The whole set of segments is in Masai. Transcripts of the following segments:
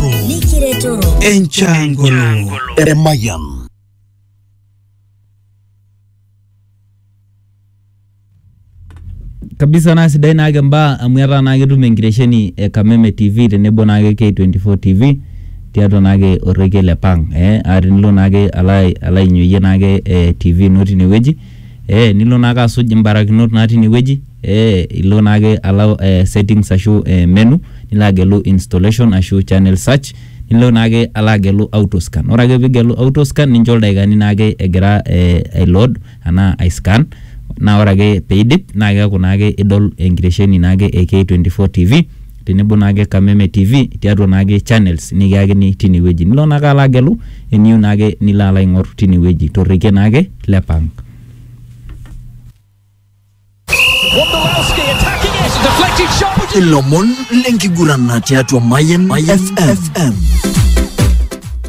Nikiretoro. Enchangolo. Emayan. kabisa naa sidai naake mbaa amu etaa naa ketum enkitesheni e Kameme TV tenebo naake K24 TV tiatua naake orrekie le Pang eh, aa tenilo naake alo ai- alo ainyoyie naake eh, TV ino tinewueji ee nilo naake asuj imbarakinot natii ine wueji ee ilo naake alo ee settings ashu ee menu, nilo agelu installation ashu channel search, nilo naake alo agelu auto scan. Ore ake piigelu auto scan, ninjo ildakikani naake egira ee aiload anaa aiscan naa ore ake piidip naake eeku naake idol enkitesheni naake e K24 TV tenebo naake Kameme TV tiatua naake channels nikiyakini tine wueji. Nilo naake alo agelu eniyieu naake nilo alo aing'or tine wueji to rrekie naake le pang. Wondolowski attacking it, deflected shot. Ilomon lenkiguran tiatua Mayan FM.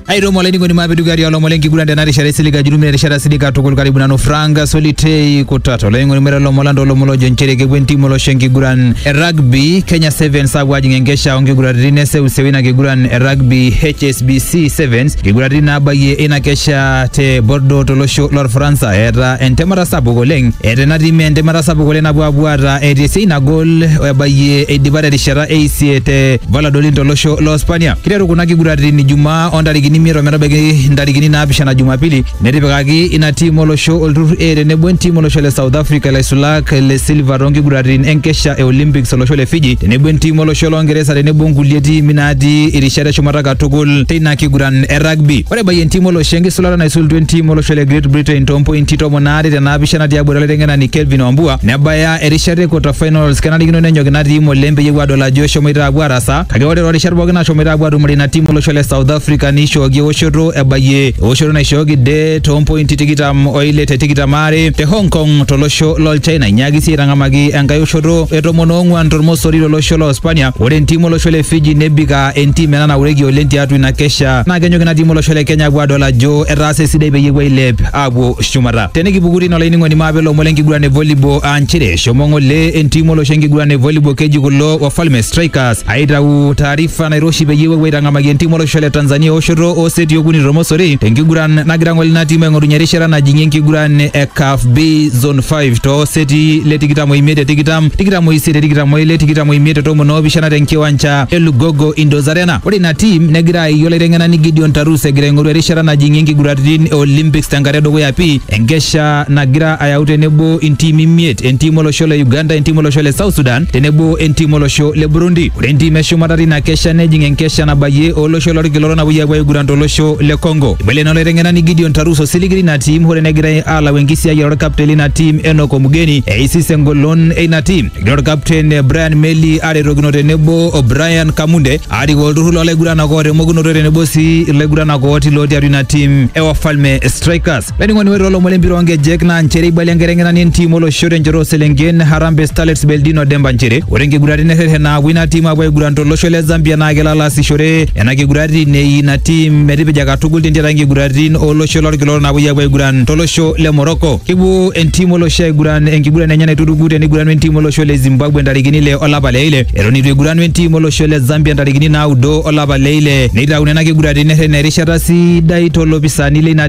aitomo olainining'oni maapidugari olomon lenkiguran tena rishata isilig ajurumina erishata silig katukul karibu nanu frank solitei kutata olainining'oni mera olomon landa olomon lojo nchere kepuo entimu olosho enkiguran e rugby kenya sevens apuo ajing enkesha onkiguraritin eseuseu ina kiguran e rugby hsbc sevens nkiguraritin naabayie ina kesha te bordo tolosho lorfaransa eeta entemata sapuk oleng eeta ena tim entemata sapuk oleng napuo apuo aata etii esiai nagol ebayie eidipa terishata eisiet te valladolid tolosho lo Hispania. Kiteru kuna kiguraritin Ijumaa o ntarikini imiet ometabaiki ntarikini naapishana Jumapili netipikaki ina tiim olosho olturrur A tenebo entiim olosho le South Africa ilaisulak le Silva toonkiguraritin enkesha e Olympics olosho le Fiji tenebo entiim olosho loongeresa tenebo nkulie tiimi naatii irishat eshumata katukul teina kiguran e rugby. Ore ebayie entiim olosho enkisulata naisulutua entiim olosho le Great Britain toompointi tomon aare te naapishana tiabori olaiteng'enani Kelvin Wambua nebaya erishata e quarter finals kenarikino nenyok ina tiim oleng peyie epuo aadol ajo eshomoita aapuo aarasaa Kake ore toorishat pooki nashomoita apuo atumore ina timu olosho le South Africa neishooki ewoshoto ebayie ewoshoto naishooki de toompointi tikitam oile te tikitam aare te Hong Kong tolosho lol China inyaaki sii aitang'amaki enkae oshoto e tomon oong'uan tormosori tolosho loo Spania. Ore entim olosho le Fiji nebik aa entim ena naureki oleng tiatua ina kesha naa kenyok ina tim olosho le Kenya apuo adol ajo etaasa esidai peyie epuo ailep apuo shumata. Tenikipuku tine olainining'oni maape ilomon lenkiguran e volleyball aa nchere Shomo ng'ole entim olosho enkiguran e volleyball keji kulo Wafalme Strikers aitau taarifa nairoshi peyie epuo aitang'amaki entim olosho le Tanzania eoshoto oo seti okuni tormosori tenkiguran nagira ng'ole ina tim aing'orunye erishata najing'ie enkiguran e CAF B Zone 5 too seti le tikitam oimiet te tikitam, tikitam oisiet te tikitam oile, tikitam oimiet te tomon oopishana tenkiwanja e Lugogo Indoors Arena. Ore ina tim negira aayie olaiteng'enani Gideon Tarus egira aing'oru erishata najing'ie nkiguraritin e Olympics tenkata edukuya pii enkesha nagira ayau tenebo intiimi imiet, entiim olosho le Uganda, entiim olosho le South Sudan tenebo entiim olosho le Burundi. Ore entiim eshumata tina kesha nejing enkesha nabayie olosho lolkila orok napuoi apuo aiguran tolosho le Congo. Ibala ina olaiteng'enani Gideon Tarus osiligi lina tiim hoo negirai aalau enkisiayiare olkapten lina tiim Enock Omugeni eisis engolon eina tiim. Egira olkapten Brian Meli aretokino tenebo o Brian Kamunde aarik olturrur loolaiguranak oota emokunoto tenebo sii ilaiguranak ooti lootii atua ina tiim e Wafalme Strikers. Laining'oni ore olomon lempira oonkejek naa nchere eibalia enkiteng'enani entiim olosho tenchoto ooselenken Harambee Starlets Beldino Demba nchere ore nkiguraritin nerreten naapuo ina tiim aapuo aiguran tolosho le Zambia naa kelo alo aasishore nena kiguraritin nei ina tiim metipija katukul tentiaraki nkiguraritin olosho lolkila orok naapuoi aapuo aiguran tolosho le Morocco. Kepuo entiim olosho aiguran enkiguran enye naituruku teneiguranu entiim olosho le Zimbabwe ntarikini ile olapa le ile eton eitu eiguranu entiim olosho le Zambia ntarikini naaudo olapa le ile neitau nena kiguraritin nerreten erishata sidai too lopisaani leina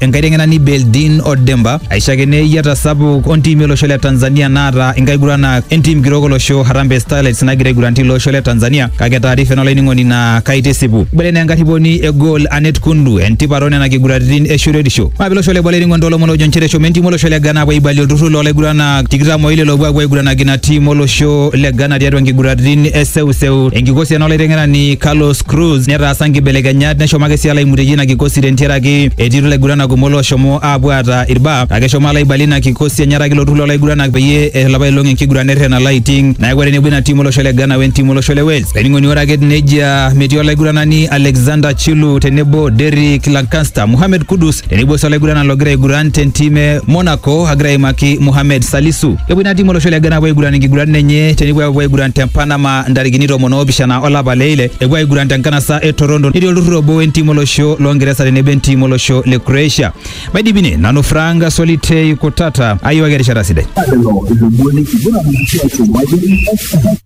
enkaiteng'enani Beldin Odemba aishakene eyiata sapuk ontimi olosho le Tanzania naata inkaiguranak entim kitok olosho Harambee Starlets nagira aiguran tilo osho le Tanzania kake taarifa ena olainining'oni naa kaitisipu ibele naa enkarriponi e goal Anet Kundu entipat onena kiguraritin e shoruetisho maape olosho le boo olainining'oni toolomon oojo nchere eshomo entim olosho le Ghana aapuo aibalie olturrur loolaiguranak tikitam oile loopuo aapuo aiguranaki ina tim olosho le Ghana tiatua nkiguraritin e seuseu enkikosi ena olaiteng'enani Carlos Cruz netaasa nkibelekenyat neshomaki sii alaimutie ina kikosi tentiaraki etii ilaiguranak kumok looshomo aapuo aata irbaa kake eshomo alaibalie ina kikosi enyaraki ilo turrur loolaiguranak peyie eishori apa ilong enkiguran nerren alo aiting neeku etenebo ina tim olosho le Ghana we ntim olosho le Wales. Olainining'oni ore ake nejia metii olaiguranani Alexander Chilu tenebo Derrick Lancaster, Mohamed Kudus tenebo sii olaiguranani logira aiguran tentim e Monaco agira aimaki Mohamed Salisu. Kepuo ina tim olosho le Ghana apuo aiguran inkiguratin enye tenepuo apuo aiguran te Panama ntarikini tomon oopishana olapa le ile epuo aiguran te nkanasa e Toronto netii olturrur obo we ntiim olosho loo Ngeresa tenebo entiim olosho le Croatia. Maidipi ine, nanu Frank Solitei Kutata ayiwaki erishata sidai. lelo ilomon lenkiguran tiatua Mayian FM.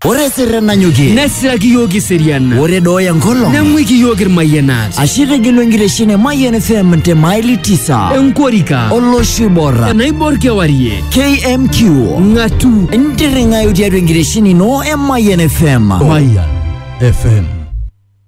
Ore sirre nanyokie. Nesiraki iyiook iseriana. Ore dooya enkolong. Neng'uiki iyiook irmayianat. Ashe etegelua enkitesheni e Mayian FM te maili tisa. Enkorika. Olosho oibor. Enaibor kewarie. KMQ. Ng'atu. Ntirring'ayu tiatua enkitesheni ino e Mayian FM. Mayian FM.